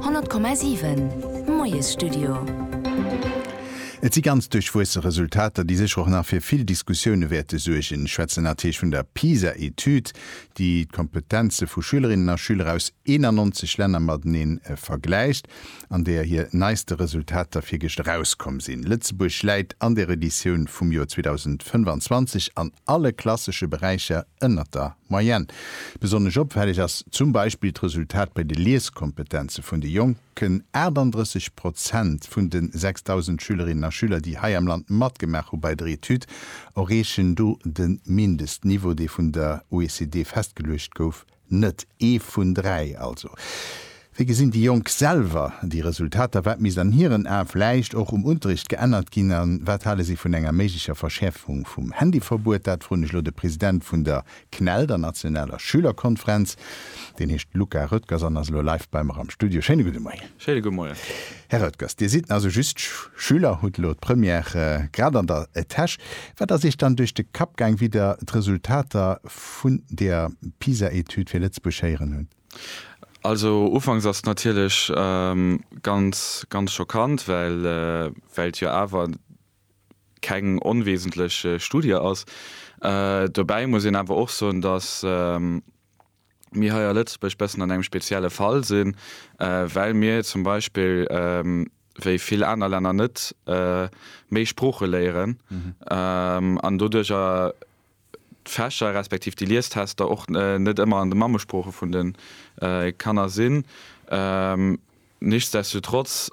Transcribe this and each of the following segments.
100,7 Moiesstudio. Et si ganz duerchwuesse Resultater, déi sécher och nach fir vill Diskussioune wäerte suergen. Ech schwätzen natierlech vun der PISA-Etüd, déi d'Kompetenze vu Schülerinnen a Schüler aus 91 Länner matenee vergläicht. an där hir neiste Resultater virgëscht erauskomm sinn. Lëtzebuerg läit an der Editioun vum Joer 2025 an alle klassesche Beräicher ënnert der Moyenne. Besonnesch opfälleg ass zum Beispill d'Resultat bei de Lieskompetenze vun de Jonken, 38 Prozent vun de 6.000 Schülerinnen a Schüler, déi hei am Land matgemaach hu bei der Etüd, erreechen do de Mindestniveau, dee vun der OECD festgeluecht gouf. Net ee vun dräi also. Wéi gesinn déi Jonk selwer déi Resultater? Wat misst an hiren Ae vläicht och um Unterricht geännert ginn? A wat hale si vun enger méiglecher Verschäerfung vum Handyverbuet? Dat froen ech elo de President vun der CNEL, der nationaler Schülerkonferenz. Deen heescht Luca Roettgers an ass elo live bei mer am Studio. Schéine gudde Moien. Schéine gudde Moien. Här Roettgers, Dir sidd also just Schüler, hutt elo d'Première grad an der Täsch. Wat ass Iech dann duerch de Kapp gaang, wéi Der d'Resultater vun der PISA-Etüd fir Lëtzebuerg héieren hunn. Also ufanks ass et natierlech ganz, ganz schockant, well et jo awer keng onwesentlech Studie ass. Dobäi muss een awer och soen, datt mir hei a Lëtzebuerg bëssen an engem spezielle Fall sinn, well mir zum Beispill wéi vill aner Länner net méi Sprooche léieren an doduercher d'Fächer respektiv déi Liestester och net ëmmer an de Mammesprooche vun de Kanner sinn. Nichtsdestotrotz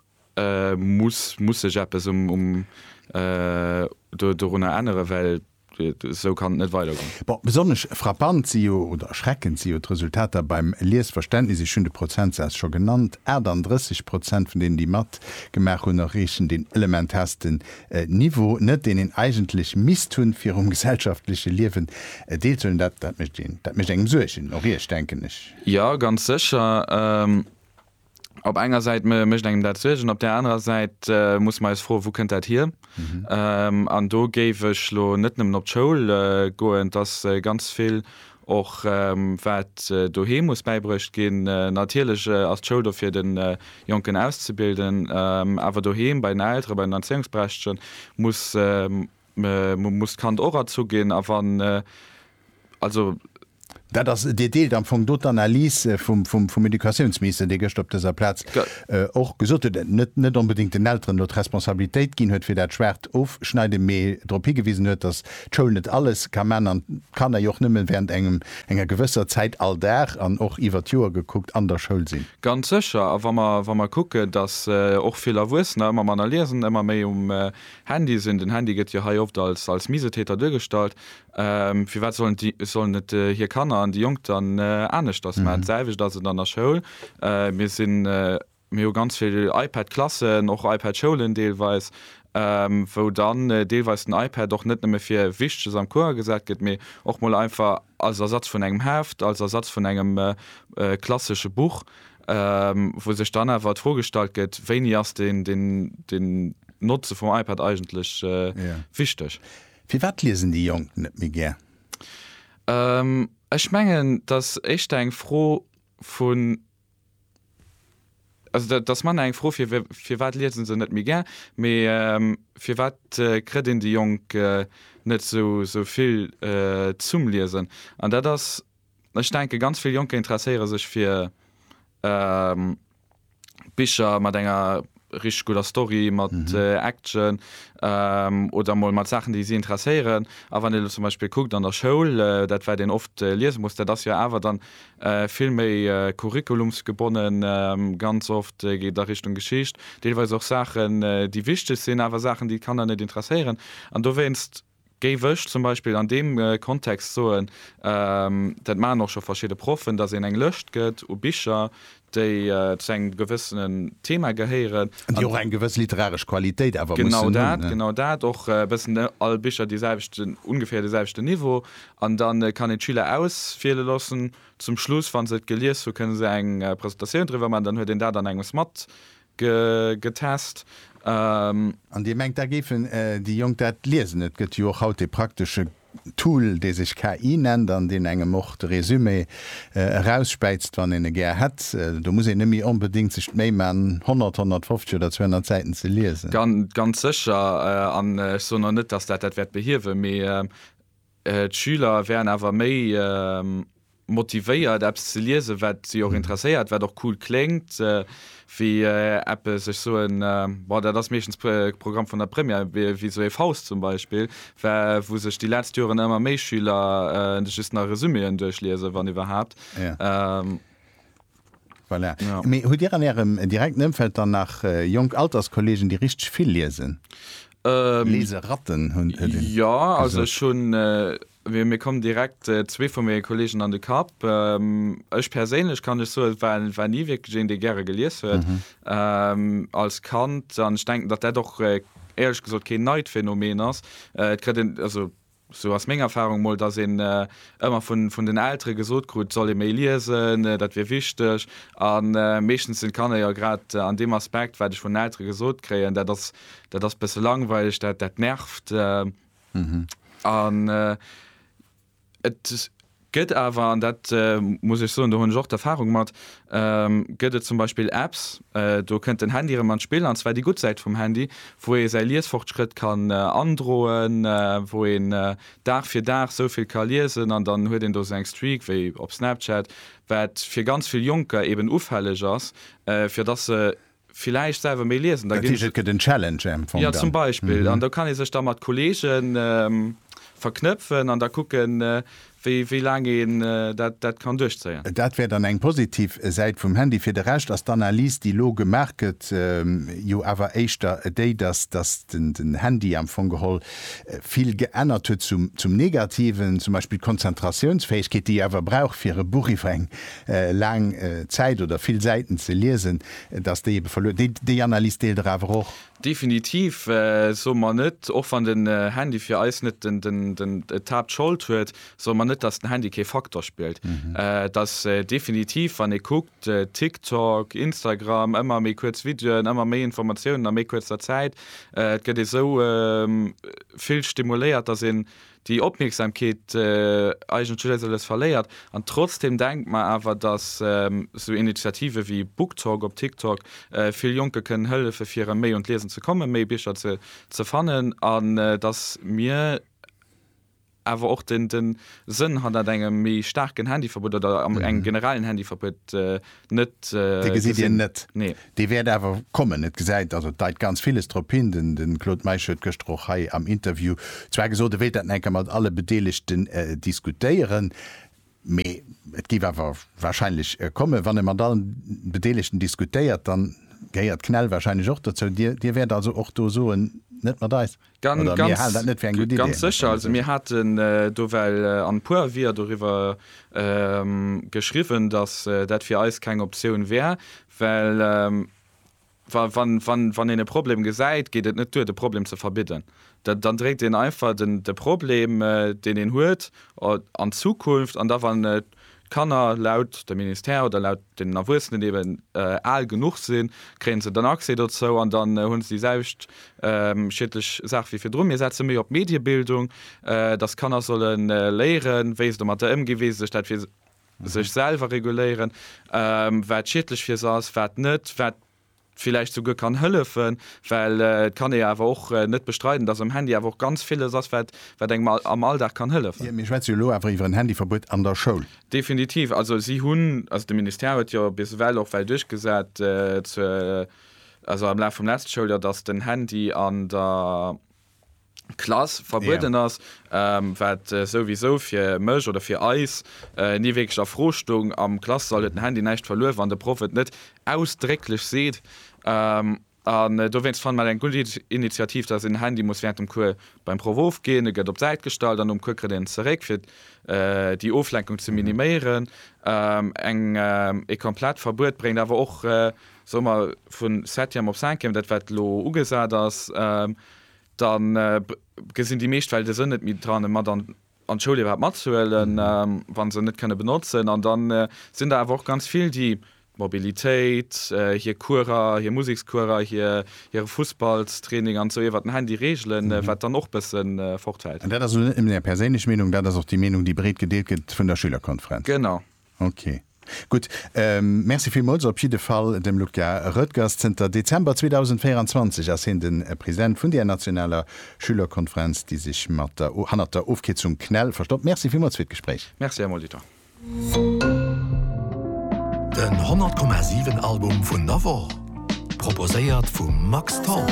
muss muss sech eppes um um do dorunner änneren, well esou kann et net weidergoen. Bon, besonnesch frappant si jo, oder erschreckend si jo d'Resultater beim Liesverständnis. Ech hunn de Prozentsaz scho genannt, 38 Prozent vun deenen, déi matgemaach hunn, erreechen den elementarsten e Niveau net, deen een eigentlech misst hunn, fir um gesellschaftleche Liewen deelzehuelen. Dat mécht een, dat mécht engem Suergen, och Iech, denken ech. Jo, ganz sécher. Op enger Säit mécht engem dat Suergen, op där anerer Säit muss mer eis froen, Wou kënnt dat hier? An do géif ech elo net nëmmen op d'Schoul goen, 't ass ganz vill Och wat doheem muss bäibruecht ginn. Natierlech ass d'Schoul do fir den Jonken auszebilden, awer doheem bei den Elteren, bei den Erzéiungsberechtegten muss muss d'Kand och erzu ginn a wann also. Dat ass, Dir deelt am Fong do d'Analys vum Educatiounsminister, dee gëschter op dëser Plaz och gesot huet, net net onbedéngt den Elteren do d'Responsabilitéit ginn huet fir dat schwaacht Ofschneiden, mee drop higewisen huet, datt d'Schoul net alles ka man an d'Kanner jo och nëmmen während engem enger gewësser Zäit all Dag an och iwwert d'Joer gekuckt an der Schoul sinn. Ganz sécher. A wa mer, wa mer kucken, dass och vill Erwuessener ëmmer manner liesen, ëmmer méi um Handy sinn, den Handy gëtt jo hei oft als, als Misetäter duergestallt, firwat sollen déi, sollen et hir Kanner an déi Jonk dann aneschters man? D'selwecht ass et an der Schoul. Mir sinn. Mir hu ganz vill iPad-Klassen, och iPad-Schoulen deelweis, wou dann deelweis den iPad och net nëmme fir Wichteges am Cours agesat gëtt, mee och mol einfach als Ersatz vun engem Heft, als Ersatz vun engem klassesche Buch, wou sech dann awer d'Fro gestallt gëtt, wéini ass den Notze vum iPad eigentlech wichteg. Firwat liesen déi Jonk net méi gär? Ech mengen, dass éischter eng Fro vu. Also dat ass manner eng Fro fir firwat liesen se net méi gär, mee firwat kritt een déi Jonk net sou sou vill zum Liesen. An dat ass, ech denke ganz vill Jonker interesséiere sech fir Bicher mat enger richteg gudder Story mat Action oder emol mat Saachen, déi si interesséieren. A wann ee elo zum Beispill kuckt an der Schoul, dat wat een oft liese muss, dat ass jo awer dann vill méi curriculumsgebonnen, ganz oft geet a Richtung Geschicht, deelweis och Saachen, déi wichteg sinn, awer Saachen, déi d'Kanner net interesséieren. An dowéinst géif ech zum Beispill an deem Kontext soen, dat maachen och scho verschidde Proffen, datt een eng Lëscht gëtt u Bicher, déi zu engem gewëssenen Thema gehéieren. An déi och eng gewëss literaresch Qualitéit awer mussen hunn. Genau dat, genau dat. Och e bëssen all Bicher dee selwechten, ongeféier dee selwechten Niveau. An da kann een d'Schüler auswiele loossen. Zum Schluss, wa se et gelies hu kënne se eng Presentatioun driwwer maachen. Dann huet een dat an engems mat getest. An Dir mengt, da géifen déi Jonk dat liesen? Et gëtt jo och haut dee praktesche Tool, dee sech KI nennt an deen engem och de Résumé erausspäizt, wann een e gär hätt. Do muss een net méi onbedéngt sech d'Méi man, 100, 150 oder 200 Säiten ze liesen. Ganz sécher. An ech soen och net, dass dat dat wäert behiewen, mee D'Schüler wären awer méi motivéiert, eppes ze liesen, wat si och interesséiert, wat och cool kléngt, wéi eppes, ech soen, bon, dat ass meeschtens de Programm vun der Première, wéi esou ee Faust zum Beispill, wou sech déi letzt Joren ëmmer méi Schüler just nach Resuméen duerchliesen, wann iwwerhaapt. Voilà. Ja. Mee hutt Dir an Ärem direkten Ëmfeld dann nach äh, jonk Alterskolleegen, déi richteg vill liesen? Ähm, Leseratten hunn äh, den- Ja, also ech hunn, äh, mir mir kommen direkt äh, zwee vu menge Kolleegen an de Kapp. Ähm, ech perséinlech kann ech soen, war, war ni wierklech een, dee gäre gelies huet Mhm. ähm, als Kand. An ech denken, datt dat och äh, éierlech gesot keen neit Phänomen ass. Äh, et kritt een, also Sou ass meng Erfahrung mol, dass een ëmmer vun den Eltere gesot krut, soll ee méi liesen, dat wier wichteg. A meeschtens sinn d'Kanner jo grad an deem Aspekt, wat ech vun den Eltere gesot kréien, dat ass dat ass e bësse langweileg, dat dat nervt. An et. gëtt awer, an dat muss ech soen, do hunn ech och d'Erfahrung mat, gëtt et zum Beispill Apps, do kënnt den Handy erëm an d'Spill, an zwar déi gutt Säit vum Handy, wou ee säi Liesfortschrëtt kann androen, wou een Dag fir Dag sou vill ka liesen an dann huet een do sou eng Streak wéi op Snapchat, wat fir ganz vill Jonker eben ufälleg ass, fir dass se villäicht selwer méi liesen. Da Dat ginn heescht, et se, gëtt en Challenge am Fong ja zum dann. Beispill, an da kann ee sech da mat Kollege verknëpfen an da kucken, wéi, wéi laang een dat, dat kann duerchzéien. Dat wär dann eng positiv Säit vum Handy. Fir de Rescht ass d'Analys, déi elo gemaach gëtt, jo awer éischter déi, dass, dass den, den Handy am Fong geholl vill geännert huet zum, zum Negativen, zum Beispill d'Konzentratiounsfäegkeet, déi ee awer brauch fir e Buch iwwer eng laang Zäit oder vill Säiten ze liesen, dass déi ebe verluer déi déi Analys deelt Der awer och? Definitiv soe mer net, och wann den Handy fir eis net den den den d'Haaptschold huet, soe mer net, dass den Handy kee Faktor spillt. Et ass definitiv, wann ee kuckt, TikTok, Instagram, ëmmer méi kuerz Videoen, ëmmer méi Informatiounen a méi kuerzer Zäit, et gëtt esou vill stimuléiert, dass een déi Opmierksamkeet eigentlech eis alles verléiert an trotzdem denkt mer awer dass sou Initiative wéi BookTok op TikTok vill Jonke kënnen hëllefen fir erëm méi un d'Liesen ze kommen, méi Bicher ze fannen an dass mir awer och den Sënn hannert engem méi staarken Handyverbuet oder engem generellen Handyverbuet net äh, gesit Dir net. Nee. Dee wäert awer kommen. Et gesäit, also et deit ganz villes drop hin. Den, den Claude Meisch huet gëschter och hei am Interview zwar gesot, e wéilt dat nach eng Kéier mat alle Bedeelegten äh, diskutéieren, mee et géif awer wahrscheinlech kommen. Wann e mat allen Bedeelegten diskutéiert, dann gehéiert Knell wahrscheinlech och dozou. Dir, Dir wäert also och do soen, net mat eis? Oder mir halen dat net fir eng gutt Idee. Ganz sécher. Also mir haten do well an e puer Aviser doriwwer geschriwwen, datt dat fir eis keng Optioun wär, well wann een e Problem gesäit, geet et net duer de Problem ze verbidden. Dann dréit een einfach de Problem, deen een huet, an d'Zukunft an da wann et D'Kanner, laut dem Ministère oder laut den Erwuessenen, déi eben al genuch sinn, kréien se dann Accès dozou an dann hunn se déi selwecht schiedlech Saach wéi virdrun. Mir setze méi op d'Mediebildung, dass Kanner solle léieren, wéi se domatter ëmginn, wéi se sech dat fir sech selwer reguléieren, wat schiedlech fir se ass, wat net, wat villäicht souguer kann hëllefen, well et kann ee jo awer och net bestreiden, dass am Handy awer och ganz villes ass, wat wat engem am Alldag kann hëllefen. Mir schwätze jo elo awer iwwer en Handyverbuet an der Schoul. Definitiv. Also si hunn, also de Ministère huet jo bis ewell och well duerchgesat, zur also am Laf vum leschte Schouljoer, dass den Handy an der, Klass verbueden yeah. ass, ähm, wat äh, souwisou fir mech oder fir eis äh, nie wéiglech a Fro stung. Am Klass soll et den Handy näischt verluer, wann de Proff et net ausdrécklech seet. Ähm, an äh, dowéinst fanne mer eng gutt Initiativ, dass en Handy muss während dem Cours beim Proff ofginn, e gëtt op d'Säit gestallt an um Cours kritt en zeréck, fir äh, déi Oflenkung ze mhm. miniméieren. Ähm, eng, äh, e komplett Verbuet bréngt awer och äh, soe mer, vun Septième op Cinquième, dat wat elo ugesat ass, da gesinn déi meescht well de Sënn net méi dran, e mat an d'Schoul iwwerhaapt matzehuelen, wa se en net kënne benotzen. An da sinn der awer och ganz vill, déi d'Mobilitéit, hir Courser, hir Musekscourser, hire Fussballstraining an esou iwwert den Handy reegelen, wat dann och e bësse fortfält. An dat ass elo net nëmmen Är perséinlech Meenung, dat ass och déi Meenung, déi breet gedeelt gëtt vun der Schülerkonferenz? Genau. Ok, gutt. Merci villmools op jidde Fall dem Luca Roettgers. Zënter Dezember 2024 ass hien de President vun deer nationaler Schülerkonferenz, déi sech hannert der Ofkierzung CNEL verstoppt. Merci villmools fir d'Gespréich. Merci, Här Molitor. Den 100,7 Album vun der Woch. Proposéiert vum Max Tholl.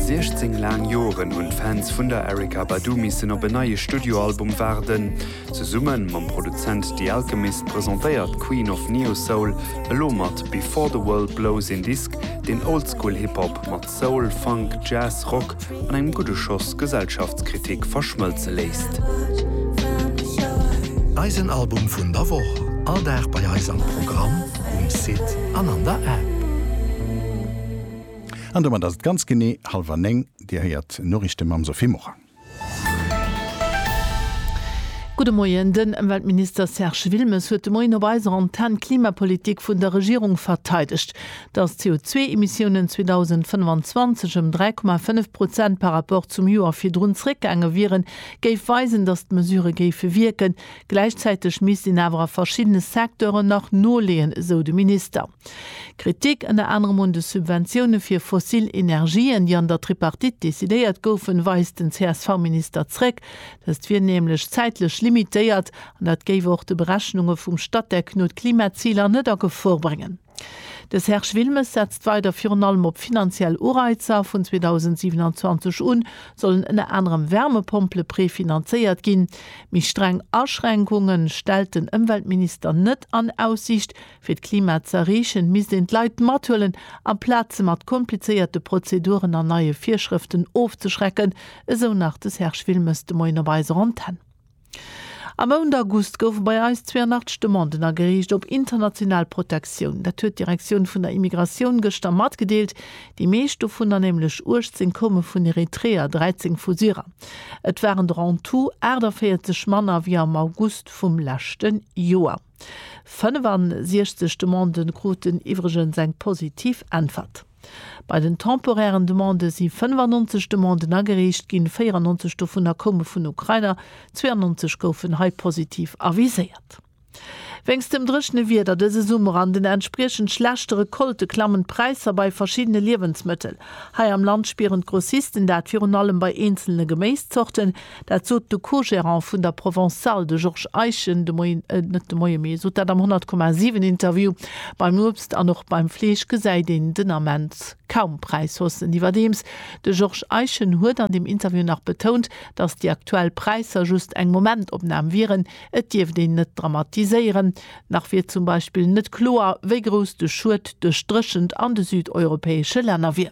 Siechzéng laang Joren hunn d'Fans vun der Erykah Badu missen op en neie Studioalbum waarden. Zesumme mam Produzent The Alchemist presentéiert d'Queen of Neo-Soul elo mat Before the World Blows een Disk, deen Oldschool-Hip-Hop mat Soul, Funk, Jazz, Rock an engem gudde Schoss Gesellschaftskritik verschmëlze léisst. Eisen Album vun der Woch, all Dag bei eis am Programm, um Site an an der App. An domat ass et ganz genee hallwer néng. Dir héiert Noriichte mam Sophie Morang. Gudde Moien, Den Ëmweltminister Serge Wilmes huet de Moien op eiser Antenn d'Klimapolitik vun der Regierung verteidegt. Datt d'CO2-Emissiounen 2025 ëm 3,5 Prozent par rapport zum Joer virdrun zeréckgaange wieren, géif weisen, datt d'Mesure géife wierken. Gläichzäiteg misst een awer a verschiddene Secteuren nach noleeën, esou de Minister. Kritik ënner anerem un de Subventioune fir fossil Energien, déi an der Tripartite decidéiert goufen, weist den CSV-Minister zréck. Dëst wier nämlech zäitlech limitéiert an dat géif och de Berechnunge vum Statec no d'Klimaziler net a Gefor bréngen. De Serge Wilmes setzt weider virun allem op finanziell Ureizer. Vun 2027 u sollen ënner anerem Wärmepompele prefinanzéiert ginn. Méi streng Aschränkunge stellt den Ëmweltminister net an Aussiicht. Fir d'Klima ze erreechen, misst een d'Leit mathuelen, amplaz se mat komplizéierte Prozeduren an neie Virschrëften ofzeschrecken, esou nach de Serge Wilmes de Moien op eiser Antenn. Am Mount August goufe bei eis 82 Demanden agereecht op international Protektioun. Dat huet d'Direktioun vun der Immigratioun gëschter matgedeelt. Déi meescht dovunner, nämlech 18, koume vun Eritreer, 13 vu Syrer. Et waren der en tout 48 manner wéi am August vum leschte Joer. 65 Demanden kruten iwwregens eng positiv Äntwert. Bei den temporären Demande si 95 Demanden agereecht ginn, 94 dovunner koume vun Ukrainer, 92 goufen hei positiv aviséiert. Wéinst dem dréchene Wieder dëse Summer an den entspriechend schlechte Recolte klammen d'Präisser bei verschiddene Liewensmëttel. Hei am Land spieren d'Grossisten dat virun allem bei eenzelne Geméiszorten, Dat sot de Co-Gérant vun der Provençale, de Georges Eischen, de Moien, net de Moie mee, sot dat am 100,7 Interview. Beim Uebst an och beim Fleesch gesäit een den Ament kaum Präishaussen. Iwwerdeems, de Georges Eischen huet an dem Interview nach betount, datt déi aktuell Präisser just eng Momentopnam wieren, et dierft een net dramatiséieren. Nach wier zum Beispill net kloer, wéi grouss de Schued duerch d'Dréchent an de südeuropäesche Länner wier.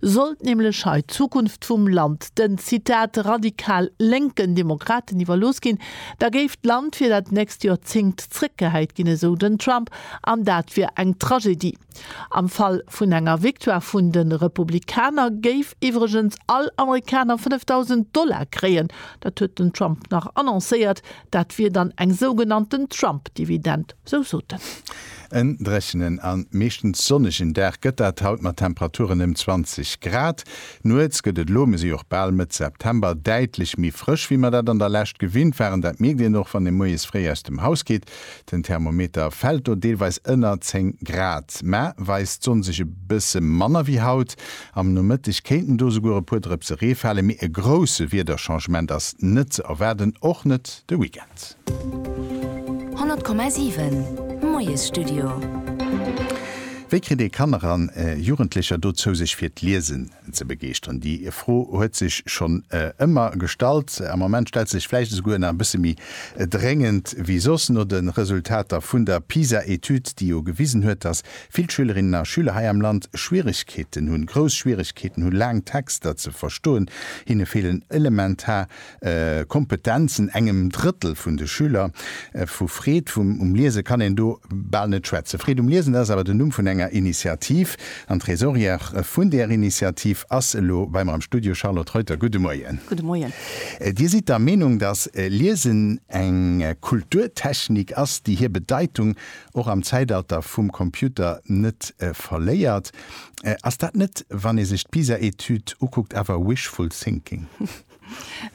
Sollt nämlech hei d'Zukunft vum Land den, Zitat, radikal lénken Demokraten iwwerlooss ginn, da géif d'Land fir dat nächst Joerzéngt zréckgehäit ginn, esou den Trump, an dat wier eng Tragedie. Am Fall vun enger Victoire vun de Republikaner géif iwwregens all Amerikaner 5.000 Dollar kréien, dat huet den Trump nach annoncéiert, dat wier dann eng sougenannten Trump-Dividend, sou sot en. En dréchenen a meeschtens sonnegen Dag gëtt dat haut mat Temperaturen ëm 20 Grad. Nuets gëtt et elo, mir si och bal Mëtt September, däitlech méi frësch, wéi mer dat an der Lescht gewinnt waren. Dat mierkt een och, wann ee moies fréi aus dem Haus geet. Den Thermometer fält do deelweis ënner 10 Grad, mä weist d'Sonn sech e bësse manner wéi haut. Am Nomëtteg kéinten do souguer e puer Drëpse Ree fale, mee e grousse Wiederchangement ass net ze erwaarden, och net de Weekend. 100,7 Moiesstudio. Wéi kritt ee Kanner an Jugendlecher dozou sech fir d'Liesen ze begeeschteren? Déi Fro huet sech schonn ëmmer gestallt, am Moment stellt se sech vläicht esouguer nach e bësse méi dréngend wéi soss. No de Resultater vun der PISA-Etüd, déi jo gewisen huet, datt vill Schülerinnen a Schüler hei am Land Schwieregkeeten hunn, grouss Schwieregkeeten hunn, laang Texter ze verstoen, hinne feelen elementar Kompetenzen, engem Drëttel vun de Schüler. Vu Freed um Liese kann een do bal net schwätzen. Freed um Liesen, dat ass awer den Numm vun enger Initiativ. An d'Tresorière vun där Initiativ ass elo bei mer am Studio. Charlotte Reuter, gudde Moien. Gudde Moien. Dir sidd der Meenung, datt Liesen eng Kulturtechnik ass, déi hir Bedeitung och am Zäitalter vum Computer net verléiert. Ass dat net, wann ee sech d'PISA-Etüd ukuckt, awer wishful thinking?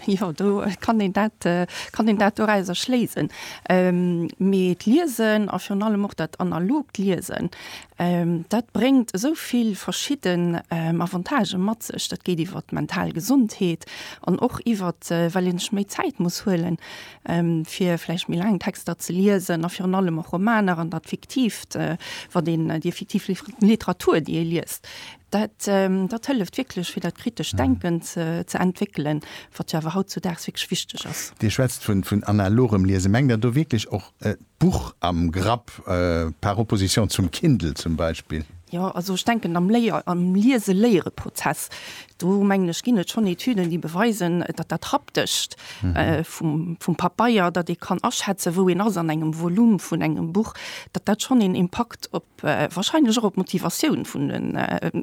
Jo, do kann een dat, kann een dat dorauser schléisen. Mee d'Liesen a virun allem och dat analogt Liesen, dat bréngt esou vill verschidden Avantagen mat sech. Dat geet iwwer d'mental Gesondheet an och iwwert, well een sech méi Zäit muss huelen, fir vläicht méi laang Texter ze liesen a virun allem och Romaner an dat Fiktiivt, wat een, déi fiktiv Literatur, déi ee liest. Dat, dat hëlleft wierklech, fir dat kritescht Denken ze entwéckelen, wat jo awer hautzudaags wierklech wichteg ass. Dir schwätzt vun, vun analogem Liesen. Mengt Der do wierklech och d'Buch am Grapp, par opposition zum Kindle zum Beispill? Jo, also ech denken am Léier-, am Liese-Léiere-Prozess, do mengen ech, ginn et schonn Etüden, déi beweisen, datt dat Haptescht vum, vum Pabeier, datt ee kann aschätzen, wou een ass an engem Volume vun engem Buch, datt dat schonn een Impakt op, Wahrscheinlech och op d'Motivatioun vun den,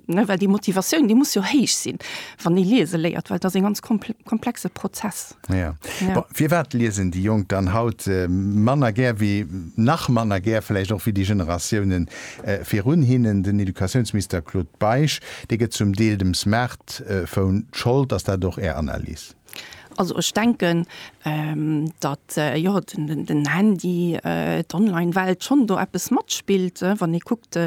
ne, well déi Motivatioun, déi muss jo héich sinn, wann ee liese léiert, well et ass e ganz komplexe Prozess. Ja. Ja. Firwat liesen déi Jonk dann haut manner gär wéi, nach manner gär vläicht och wéi déi Generatioune virun hinnen? Den Educatiounsminister Claude Beisch, dee gëtt zum Deel dem Smartphone d'Schold. Ass dat och Är Analys? Also ech denken, datt jo den Handy, d'Onlinewelt schonn do eppes matspillt, wann ee kuckt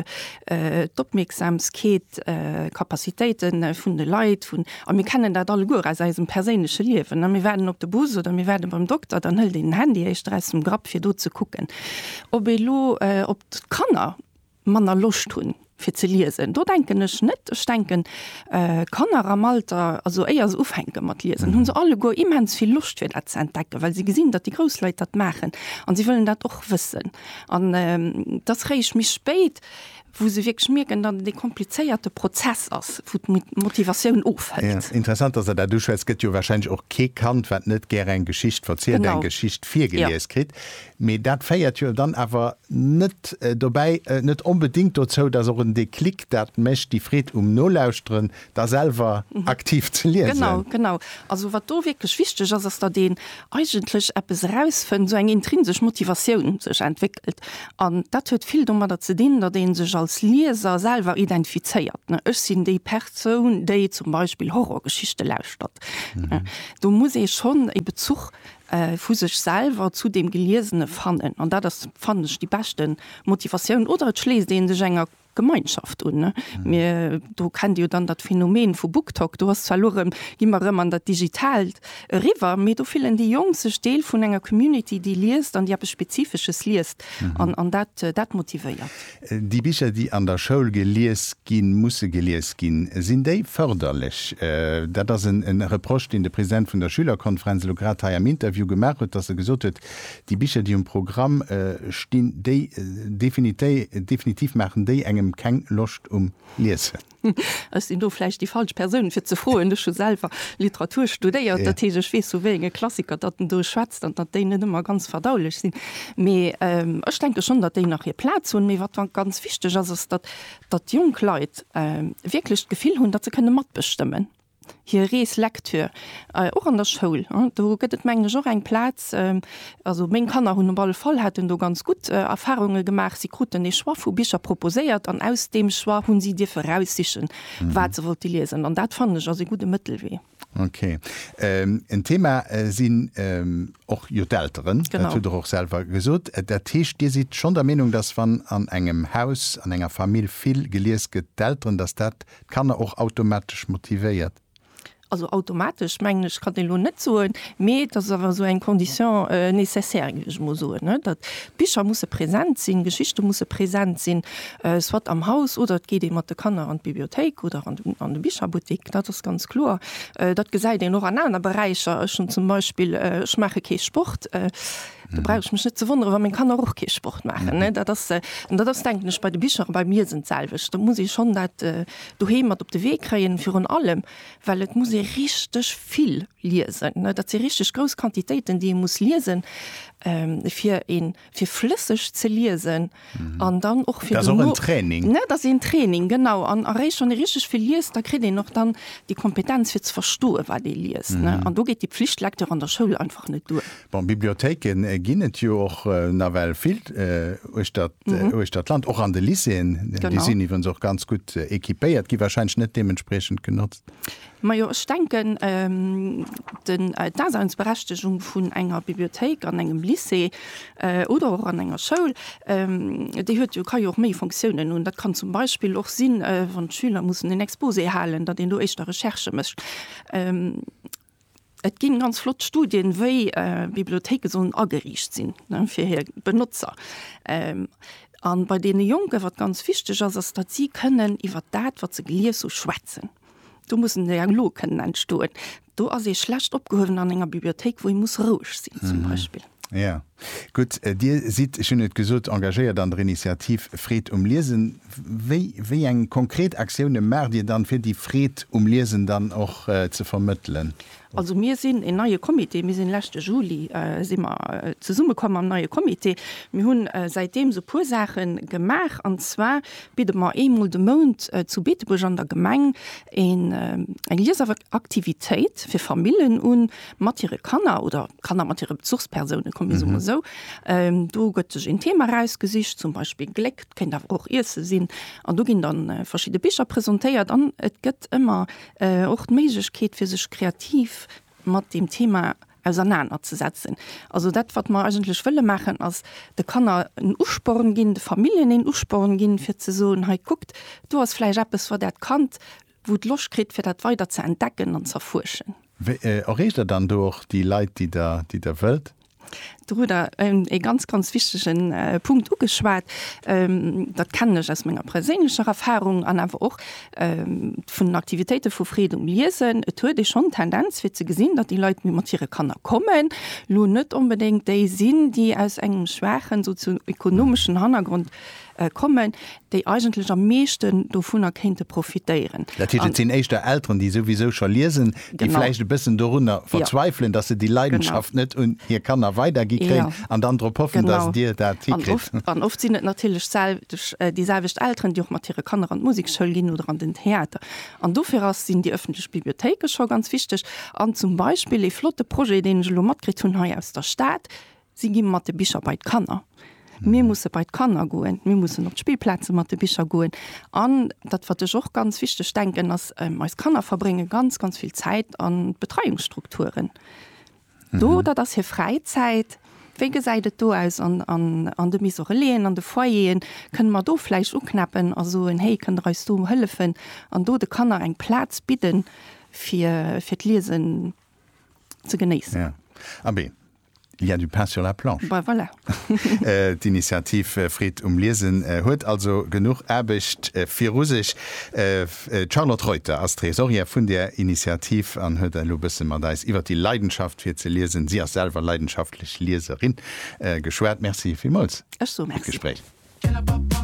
d'Opmierksamkeet, d'Capacitéite vun de Leit, vun, a mir kennen dat alleguer aus eisem perséinleche Liewen, ne, mir waarden op de Bus oder mir waarde beim Dokter, dann hëlt een den Handy éischter aus dem Grapp, fir do ze kucken. Ob ee lo, ob d'Kanner manner Loscht hunn fir ze liesen. Do denken ech net. Ech denken Kanner am Alter, also éier se ufänke mat liesen, hu se alleguer immens vill Loscht fir dat ze entdecken, well se gesinn, datt déi grouss Leit dat maachen an si wëllen dat och wëssen. An et ass réischt méi spéit, wou se wierklech mierken, datt et ee komplizéierte Prozess ass, wou d'Motivatioun ofhëlt. Interessant, datt Der dat uschwätzt. Et gëtt jo warscheinlech och kee Kand, wat net gär eng Geschicht verzielt, eng Geschicht virgelies kritt. Mee dat féiert jo dann awer net dobäi, net onbedéngt dozou, dass och en Déclic dat mécht, déi Freed um Nolauschteren, da selwer aktiv ze liesen. Genau, genau. Also wat do wierklech wichteg ass, ass, datt een eigentlech eppes erausfënnt, esou eng intrinsesch Motivatioun sech entwéckelt. An dat huet vill domadder ze dinn, datt ee sech als Lieser selwer identifizéiert, ne, ech sinn déi Persoun, déi zum Beispill Horrorgeschichte lauschtert. Do muss ee schonn e Bezuch vu sech selwer zu deem Geliesene fannen, an dat ass, fannen ech, déi beschte Motivatioun, oder et schléisst ee sech enger Gemeinschaft un. Mir do kennt jo dann dat Phänomen vu BookTok, do ass zwar elo erëm, gi mer erëm an dat Digitaalt eriwwer, mee do fillen déi Jonk sech Deel vun enger Community, déi liest an déi eppes Spezifesches liest, an dat motivéiert. Déi Bicher, déi an der Schoul gelies ginn, musse gelies ginn. Sinn déi fërderlech? Dat ass e Reproche, deen de President vun der Schülerkonferenz elo grad hei am Interview gemaach huet, datt e gesot huet, déi Bicher, déi um Programm stinn, déi definitiv maachen déi engem keng Loscht um Liesen. Ech sinn do vläicht déi falsch Persoun, fir ze froen. Ech hu selwer Literatur studéiert, dat heescht, ech weess, vu wéi enge Klassiker datt en do schwätzt an datt déi net ëmmer ganz verdaulech sinn. Mee ech denke schonn, datt déi nach hir Plaz hunn. Mee wat ganz wichteg ass, ass, datt jonk Leit wierklech d'Gefill hunn, datt se kënne matbestëmmen. hir Rees Lektür och an der Schoul. Do gëtt et mengen ech och eng Plaz. Also meng Kanner hunn op alle Fall, haten do ganz gutt Erfahrunge gemaach. Si kruten ee Choix vu Bicher proposéiert an aus deem Choix hu si dierfe raussichen, wat se wollte liesen. An dat fannen ech ass ee gudde Mëttelwee. Ok. En Thema sinn och jo d'Elteren, dat hutt Der och selwer gesot. Dat heescht, Dir sidd schonn der Meenung, dass wann an engem Haus, an enger Famill vill gelies gëtt, d'Elteren, dass dat D'Kanner och automatesch motivéiert? Also automatesch mengen ech kann een elo net soen, mee et ass awer esou eng Condition nécessaire géif ech mol soen, ne, datt d'Bicher musse präsent sinn, d'Geschichte musse präsent sinn, soit am Haus oder et geet ee mat de Kanner an d'Bibliothéik oder an de an de Bicherbuttek, dat ass ganz kloer. Dat gesäit een och an aner Beräicher. Ech hunn zum Beispill, ech maache kee Sport, Da brauch ech mech net ze wonneren, wa meng Kanner och kee Sport maachen. Dat ass, an dat ass denken ech bei de Bicher, bei mir sinn d'selwecht, da muss ee schonn dat doheem mat op de Wee kréien. Virun allem, well et muss ee richteg vill liesen. Dat si richteg grouss Quantitéiten, déi ee muss liesen, fir ee fir flësseg ze liesen. An dann och fir duerno. Dat ass och en Training. Dat ass een Training, genau. An eréischt wann ee richteg vill liest, da kritt een och dann déi Kompetenz fir ze verstoen, wat ee liest. An do geet déi Pflichtlektür an der Schoul einfach net duer. Bon, Bibliothéike ginn et jo och nawell vill uechter d'Land, och an de Lycéeën. Déi sinn iwwerens och ganz gutt equipéiert, gi warscheinlech net deementspriechend genotzt. Majo, ech denken, den, d'Daseinsberechtegung vun enger Bibliothéik an engem Lycée oder och an enger Schoul, déi huet jo, ka jo och méi Fonctiounen hunn. Dat kann zum Beispill och sinn, wann d'Schüler mussen en Exposé halen, datt een do éischter Recherche mécht. Et ginn ganz flott Studien, wéi Bibliothéike sollen ageriicht sinn fir hir Benotzer. An bei deene Jonken, wat ganz wichteg ass, ass datt si kënnen iwwer dat wat se gelies hu schwätzen. Do mussen Dialoge kënnen entstoen. Do ass ee schlecht opgehuewen an enger Bibliothéik wou ee muss roueg sinn zum Beispill. Jo, gutt. Dir sidd, ech hunn et gesot, engagéiert an der Initiativ Freed um Liesen. Wéi, wéi eng konkret Aktioune maacht Dir dann, fir déi Freed um Liesen dann och ze vermëttelen? Also mir sinn een neie Comité. Mir sinn leschte Juli si mer zesumme komm am neie Comité. Mir hunn säitdeem esou e puer Saache gemaach. An zwar bidde mer eemol de Mount zu Beetebuerg an der Gemeng een, eng Liesaktivitéit fir Famillen un, mat hire Kanner oder Kanner mat hire Bezuchspersoune kommen, so mhm. sou. Ähm, do gëtt sech en Thema rausgesicht, zum Beispiel Gléck, kennt awer och Iesse sinn. An du ginn dann äh, verschiedene Bicher präsentéiert an et gëtt ëmmer äh, och d'Méiglechkeet fir sech kreativ mat dem Thema auseinanderzusetzen. Also dat wat man eigentlich wëlle machen ass de Kanner en Usporen ginn, de Familien en Usporen ginn fir ze soen hei guckt, du hast fleisch Appppes vor dat Kant Wou et Loscht kritt, fir dat weider ze entdecken an z'erfuerschen. Wéi erreecht der dann do och déi Leit, déi der, déi der wëllt? Do hutt der e ganz, ganz wichtege Punkt ugeschwat. Dat kennen ech aus menger perséinlecher Erfahrung an awer och vun den Aktivitéite vu Freed um Liesen. Et huet ee schonn d'Tendenz, fir ze gesinn, datt déi Leit, déi mat hire Kanner kommen, elo net onbedéngt déi sinn, déi aus engem schwaachen sozio-ekonomeschen Hannergrond kommen, déi eigentlech am meeschten dovunner kéinte profitéieren. Dat heescht, et sinn éischter Elteren, déi souwisou scho liesen, déi vläicht e bëssen dorunner verzweifelen, dass se déi Leidenschaft net un hir Kanner weidergi kréien an dann drop hoffen, dass Dir dat hikritt. An oft sinn et natierlech déi selwecht Elteren, déi och mat hire Kanner an d'Musekschoul ginn oder an den Theater. An dofir sinn déi öffentlech Bibliothéike scho ganz wichteg. An zum Beispill ee flotte Projet, deen ech elo matkritt hunn hei aus der Stad, Si gi mat de Bicher bei d'Kanner. Mir musse bei d'Kanner goen, mir mussen op d'Spillplaze mat de Bicher goen. An dat, wat ech och ganz wichteg denken, ass, eis Kanner verbrénge ganz, ganz vill Zäit a Betreiungsstrukturen. Do, dat ass hir Fräizäit. Wéi gesäit et do aus an de Misoreleen, an de Foyeren? Kënne mer do vläicht uknäppen a soen, Héi, kënnt Der eis do hëllefen an do de Kanner eng Plaz bidden, fir d'Liesen ze genéissen? Abee, Il y a du pain sur la planche. Ben voilà. D'Initiativ Freed um Liesen huet also genuch Aarbecht viru sech. D'Charlotte Reuter ass d'Tresorière vun där Initiativ an huet elo e bësse mat eis iwwer déi Leidenschaft fir ze liesen, si ass selwer leidenschaftlech Lieserin, geschwat. Merci villmools fir d'Gespréich. Ech soe Merci.